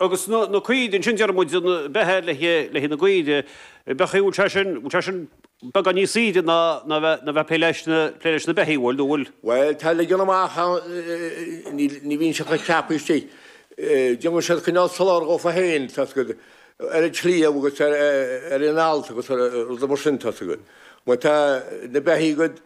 Agus na caoirigh ansin, deir muid, a bheith i leith na gcaorach, beacha, an bhfuil sé sin beagán níos saoire ná a bheith ag plé leis na beithígh, an bhfuil, nó an bhfuil? Bhuel, tá ligean amach ann, ní bhíonn siad chomh ceaptha istigh, déanann siad cineál soláthar dhófa féin, tá a fhios agat, ar an tsliabh agus ar an allt agus rudaí mar sin, tá a fhios agat. Bhuel, tá na beithígh agat.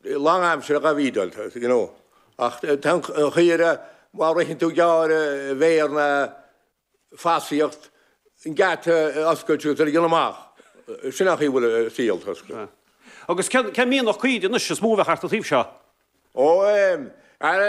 lánaimseartha dhá bhfeedáil, you know, ach tá an chaora, má ritheann tú gearr i bhféar nó fosaíocht, an geata a oscailt agus iad a ligean amach, sin an chaoi a bhfuil a saol, tá a fhios agat. Agus cén cén mianach caoirigh anois, is mó a bheadh thart an taobh seo? Ó, eh, ara,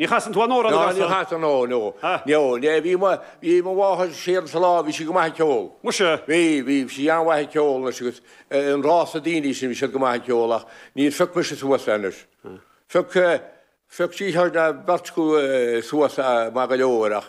Ní chasann tú anó, rud a chasann. Ná ní chasann, ah no, ah no. Ah no. Bhí, bhí mo, bhí mo mháthair siar sa lá, bhí sí go maith ag ceol. Muise. Bhí, bhí sí an-mhaith ag ceol anois agus an rása daoine sin, bhí siad go maith ag ceol ach níor phioc mise suas é anois. Phioc, phioc duine nó beirt acu suas é maith go leor ach